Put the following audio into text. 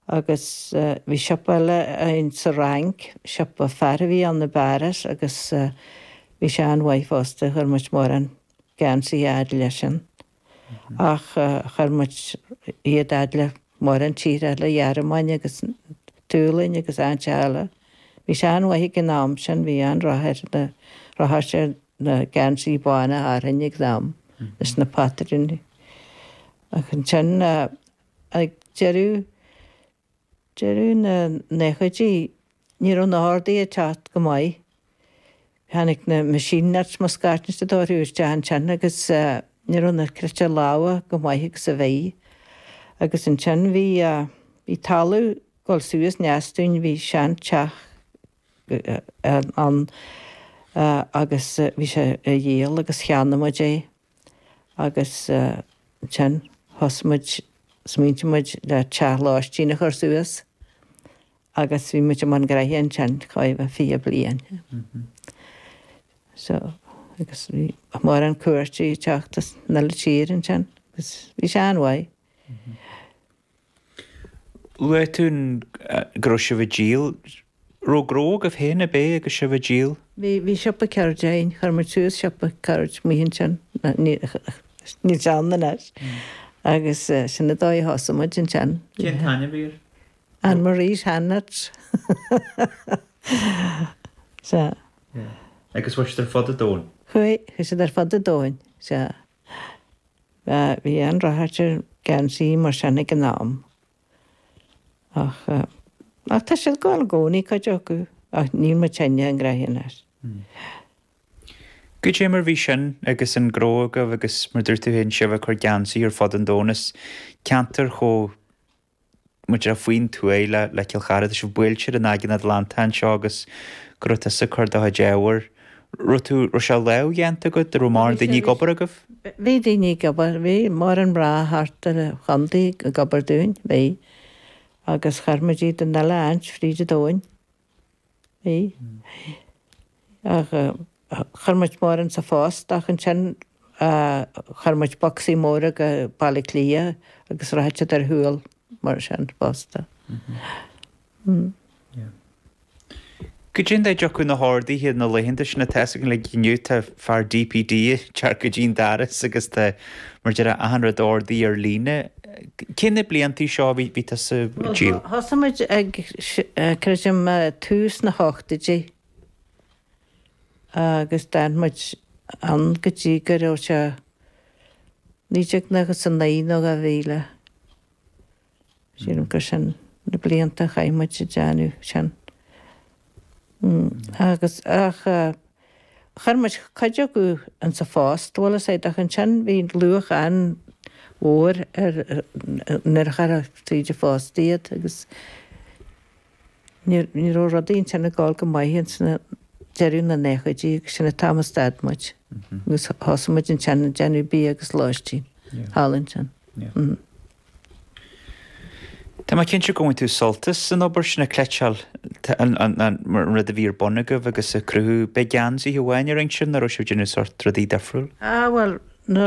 Agus bhí siopa eile againn sa Fhrainc, siopa fear a bhí ann i bPáras agus bhí sé an-mhaith fosta, chuir muid mórán geansaí a fhad leisean. Ach chuir muid iad a fhad le mórán tíortha eile, Ghearmáin agus tSualainn agus áiteacha eile. Bhí sé an-mhaith ag an am sin, bhí an-rath air, ar na geansaí bána Árann ag an am, leis na patrúin. Ach ansin. Ag deireadh deireadh na naochaidí ní raibh na hordaithe ag teacht go maith. Tháinig na machine knits mar a déarfá isteach ansin agus ní raibh na cniotáil láimhe chomh maith agus a bhí. Agus ansin bhí bhí talamh ag dul suas in aice dúinn, bhí seanteach ann agus bhí sé á dhíol agus cheannaigh muid é. agus ansin thosaigh muid, smaointigh muid ar teach lóistín a chur suas agus bhí muid i mbun graithe ansin chóir a bheith fiche bliain. So, agus bhí mórán cuairteoirí ag teacht as 'ach uile tír ansin, bhí sé an-mhaith. Luaigh tú go raibh sibh ag díol. Raibh gnó agaibh féin, an b'é, agus sibh ag díol? Bhí, bhí siopa ceirde againn. Chuir muid suas siopa ceirde amuigh ansin, níl sé ann anois, agus sin an dóigh a thosaigh muid ansin. Cén t-ainm a bhí air? Anne Marie's Handknits. Sea. Agus chuaigh siad ar fud an domhain? Chuaigh, chuaigh siad ar fud an domhain, sea. Bhí an-rath ar gheansaí mar sin ag an am. Ach tá siad go maith i gcónaí, cuid acu, ach níl mé féin ina ngraithe anois. Goidé mar bhí sin agus an gnó agaibh agus, mar dúirt tú féin, sibh ag cur geansaí ar fud an domhain, as ceantar chomh. mór faoin tuaith le le Cill Chartha, tá sibh buailte ar an Aigéan Atlantach anseo agus go raibh tusa ag cur do chuid ábhair. Raibh tú, raibh sé lámhdhéanta agat? Raibh mórán daoine ag obair agaibh? Bhí daoine ag obair, bhí mórán mná thart ar an chontae ag obair dúinn, bhí, agus chuir muid iad 'ach uile áit fríd an domhain. Chuir muid mórán sa phost ach ansin chuir muid bocsaí móra go Baile Átha Cliath agus rachadh siad ar shiúl mar sin fosta. Goidé mar a dtiocfadh na horduithe na laethanta sin Tá fhios againn inniu, tá fear DPD ag teacht go dtí an doras agus tá, mar a déarfá, achan rud á ordú ar líne. Cé na blianta seo a bhí tusa ag díol. Thosaigh muid ag, creidim, tús na hochtaidí agus d'fhan muid ann go dtí go raibh sé naoi déag nócha is a naoi nó dhá mhíle. Sílim gur sin na blianta a chaith muid ag déanamh sin. Agus ach chuir muid cuid acu ins a' phost, bhuel is é, ach ansin bhí luach an-mhór ar, nuair a chuirtheá tríd an phost iad agus níor, ní raibh rudaí ansin ag gabháil go maith ins na, deireadh na naochaidí agus sin an t-am a stad muid. Agus thosaigh muid ansin ag déanamh bia agus lóistín thall ansin. Tá mé cinnte gur bhain tú sult as an obair sin ag cleiteáil, an rud a bhí ar bun agaibh agus ag cruthú. Ab é geansaithe amháin a rinn sibh nó an raibh sibh ag déanamh sórt rudaí difriúil. Ah bhuel, na